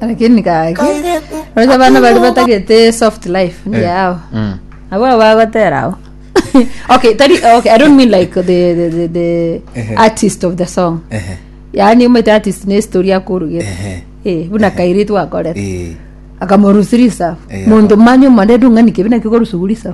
Lakini gaki roche abana baria batagete soft life Eh, yao mm. abo abo bagotera abo okay tari okay i don't mean like the the, the, the Ehe. artist of the song Ehe, yaani omete artist ne story akorugete ehe, eh buna kairitu gakorete eh, akamorusirisa Eh, mundu manya omorero ng'ani kibi nakio korusugurisa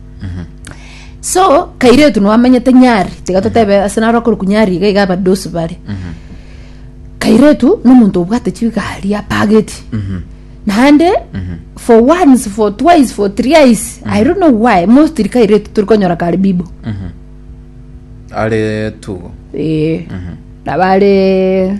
so kairetu nwamenyete nyari tiga totebe ase naro akorokwa nyari iga iga abadosi bare kairetu nomonto obwate chigari apageti naende for once for twice for thrice i don't know why mostly kairetu tori konyora kare bibo are tugo ee nabare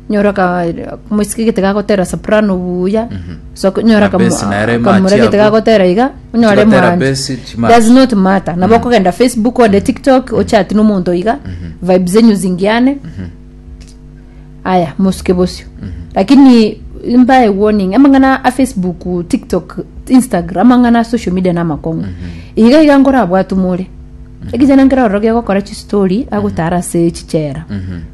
nyora ka moisike gete gagotera soprano buya so nyora Na bass nere kamura match gete abwo. gagotera iga onyore Tigatera mwancho bass, chi match. does not matter nabo okogenda facebook ode tiktok ochati na omonto iga vibe zenyu zingiane aya mosuke bosio lakini mbae warning amang'ana a facebook tiktok instagram amang'ana a social media na amakong'u iga iga nkorabwate more ekechana nkere ororo gegokora chistori agotara ase chichera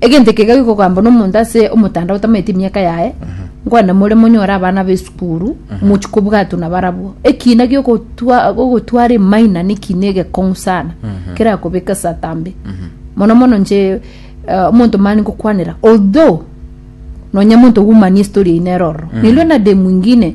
Egento eke iga gikogambwa nomonto ase omotanda otamaeti emiaka yaye, nkwane more monyore abana b'esukuru, mochi kobwatwa nabarabwo. Ekiina gi'ogotwa- ogotwara emaina nekiina egekong'u sana, kerakobeka esata mbe. Mono mono inche eh, omonto mani ngokwanera, although nonya monto bw'umani estoria eye nere ororo, nilwe na de mwingine,